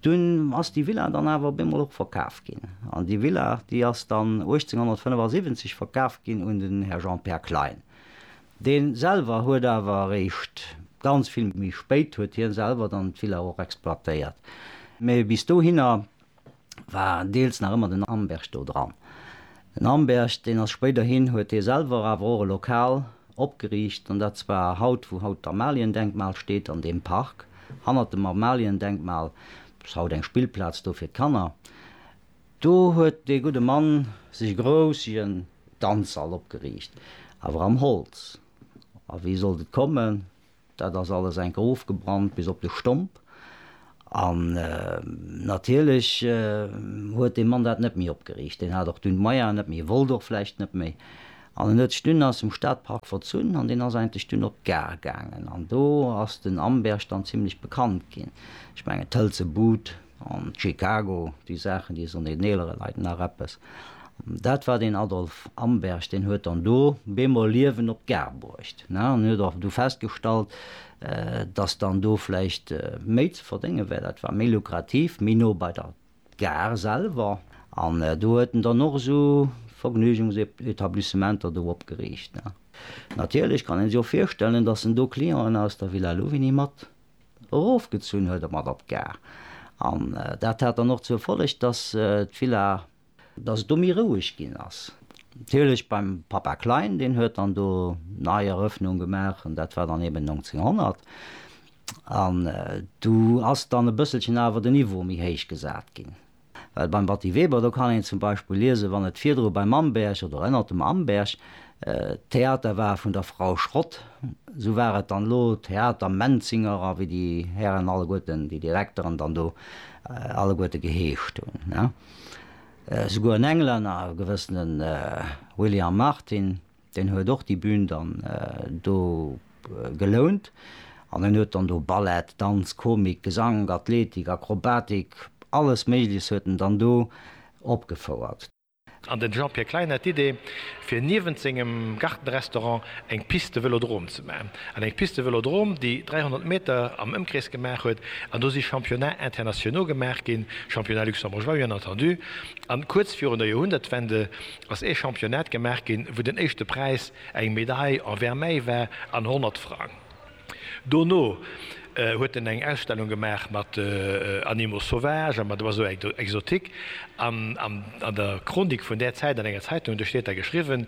Dunn ass déi Villa dann awer op eemol och verkaf ginn. An déi Villa, déi ass dann 1875 verkaf ginn un den Här Jean-Pär Klein. Dee selwer huet awer eréischt ganz vill méi spéit, huet hie selwer dann d'Villa och exploitéiert. Mee bis dohinner war deels nach ëmmer den Amberg do dran. Den Amberg, deen ass spéiderhin, huet hie selwer awer och e Lokal opgeriicht, an dat zwar haut, wou haut d'Amaliendenkmal steet, an deem Park hannert dem Amaliendenkmal. Dat ass haut eng Spillplaz do fir d'Kanner. Do huet dee gudde Mann sech e groussigen Danzsall opgeriicht, awer am Holz. A wéi sollt et kommen? Dat ass alles enker ofgebrannt bis op de Stomp. An natierlech huet dee Mann dat net méi opgeriicht. Deen hat och dunn d'Meier net méi, wollt och vläicht net méi. An en huet sech dunn aus dem Stadpark verzunn an deen ass eigentlech dunn op d'Gare gaangen. An do ass den Amberg dann zimlech bekannt ginn. Ech mengen d'Hëlze Bud. an Chicago, déi Saachen, déi soen den eelere Leit nach eppes. Dat war den Adolf Amberg, deen huet dann do bemol Liewen op d'Gare bruecht an huet och du festgestallt, datt dann do vläicht méi ze verdénge wär, dat war méi lukrativ, méi no bei der Gare selwer. An do huet en dann och esou Vergnügungsetablissementer do opgeriicht. Natierlech kann ee sech och virstellen, datt en do Clienten aus der Villa Louvigny mat Erofgezunn huet e mat op d'Gare an dat hat dann och zur Folleg, dass d'Villa. Dass et do méi roueg ginn ass. Natierlech beim Papa Klein, deen huet dann do nei Erëffnung gemaach an dat war dann eben 1900 an du ass dann e bësselchen awer de Niveau méi héich gesat ginn. Well beim Batty Weber, do kann een zum Beispill liesen, wann et virdru beim Amberg oder ënnert dem Amberg d'Theater war vun der Frau Schrott, esou war et dann elo Theater Menzinger a wéi déi Hären alleguerten, déi Direkteren dann do alleguerte geheescht hunn. Esouguer en Englänner, e gewëssene William Martin, Deen huet och déi Bühn dann do gelount an en huet dann do Ballett, Danz, Komik, Gesank, Athletik, Akrobatik, alles Méigleches huet en dann do opgefouert. An den Jean-Pierre Klein hat d'Idee, fir niewent sengem Gartenrestaurant eng Piste Vëlodrom ze maachen. An eng Piste Vëlodrom, déi 300 Meter am Ëmkrees gemaach huet. An do si Championnats internationaux gemaach ginn, Championnats luxembourgeois, bien entendu. An kuerz virun der Joerhundertwende ass ee Championnat gemaach ginn, wou den éischte Präis eng Medaille en Vermeil war an 100 Frang. Dono huet en eng Ausstellung gemaach mat Animaux sauvages a mat Oiseaux exotiques. An an der Chronik vun där Zäit an enger Zeitung, do steet da geschriwwen,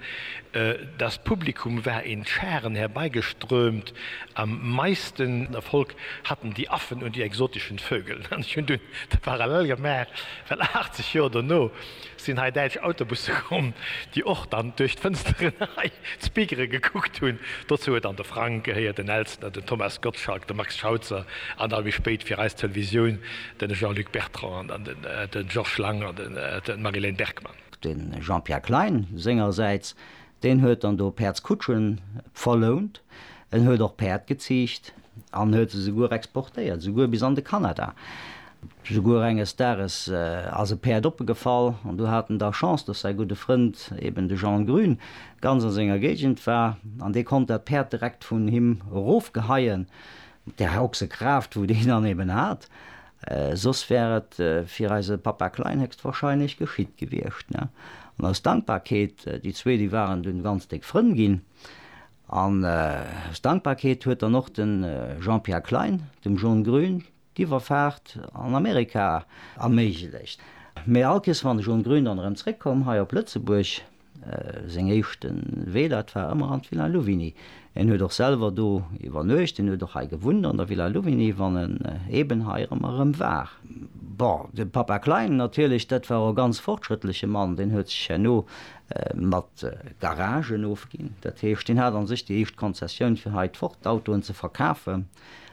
Das Publikum war in Scharen herbeigeströmt, am meisten Erfolg hatten die Affen und die exotischen Vögel. An ech hunn dunn de Parallel gemaach, well 80 Joer dono Sinn hei däitsch Autobusse komm, déi och dann duerch d'Fënsteren hei zu Bigeren gekuckt hunn. Dozou huet dann de Frank gehéiert, den Elstner, den Thomas Gottschalk, de Max Schauzer an da méi spéit fir eis Televisioun de Jean-Luc Bertrand an den Georges Lang an d'Marie-Léne Bergmann. De Jean-Pierre Klein sengersäits, deen huet dann do Päerdskutschen verlount. En huet och Päerd geziicht an huet se souguer exportéiert, souguer bis an de Kanada. Souguer enges Dages ass e Päerd oppegefall an du hat en da Chance, dass säi gudde Frënd, eben de Jean Grün, ganz a senger Géigend war an dee konnt dat Päerd direkt vun him erofgeheien, mat där Ochsekraaft, wou deen dann eben hat. Soss wär et fir eise Papa Klein héchstwahrscheinlech geschitt gewiescht. An aus Dankbarkeet, déi zwee, déi waren dunn ganz déck Frënn ginn, an aus Dankbarkeet huet dann och de Jean-Pierre Klein dem John Grün d'Iwwerfaart an Amerika erméiglecht. Mee all Kees wann ech un Grün dann erëm zréck komm hei op Lëtzebuerg, seng éischte Wee dat war ëmmer an d'Villa Louvigny. En huet och selwer do iwwernuecht, en huet och hei gewunnt an der Villa Louvigny wann en eeben hei erëm erëm war. Bon, de Papa Klein natierlech, dat war och e ganz fortschrëttleche Mann, deen huet sech herno mat Garagen ofginn, dat heescht deen hat an sech déi éischt Konzessioun fir hei d'Ford-Autoen ze verkafen.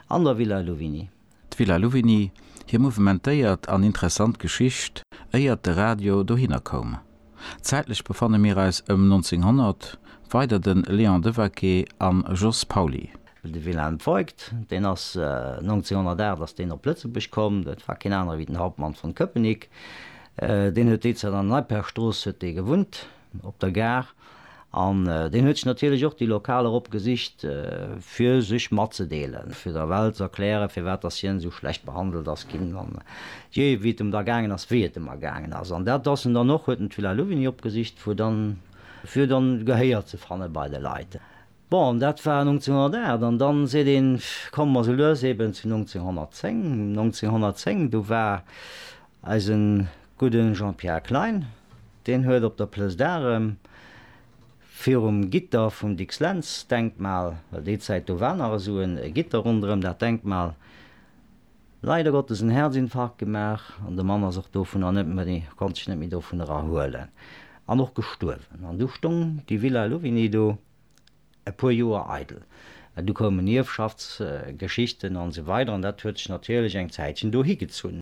An der Villa Louvigny. D'Villa Louvigny, hir mouvementéiert an interessant Geschicht, éiert de Radio dohinner koum. Zäitlech befanne mir eis ëm 1900, weider de Léon Devaquet an Jos Pauly. De Wilhelm Voigt, deen ass 1908 ass deen op Lëtzebuerg komm, dat war keen aner wéi den Hauptmann von Köpenick. Deen huet déizäit an der Neiperstrooss huet dee gewunnt. op der Gare, an deen huet sech natierlech och déi Lokaler eropgesicht, fir sech matzedeelen, fir der Welt ze erklären, firwat dass hien esou schlecht behandelt ass ginn, an je wéi et em da gaangen ass, wéi et em ergaangen ass. An dat ass en dann och, huet en d'Villa Louvigny opgesicht, fir dann, fir dann Gehéier ze fanne bei de Leit. Bon, dat war 1908 an dann seet een, komm mer sou lues eben zu 1910. 1910, do war eise gudde Jean-Pierre Klein, deen huet op der Plëss d'Arrem virum Gitter vum Dicks-Lentz-Denkmal, well déi Zäit do war nach esou e Gitter ronderëm dat Denkmal, Leider Gottes en Herzinfarkt gemaach an de Mann ass och dovunner net méi, konnt sech net méi dovun erahuelen an och gestuerwen. An du stong déi Villa Louvigny do e puer Joer eidel. Du koumen Ierfschaftsgeschichten an esou weider an dat huet sech natierlech eng Zäitchen do higezunn.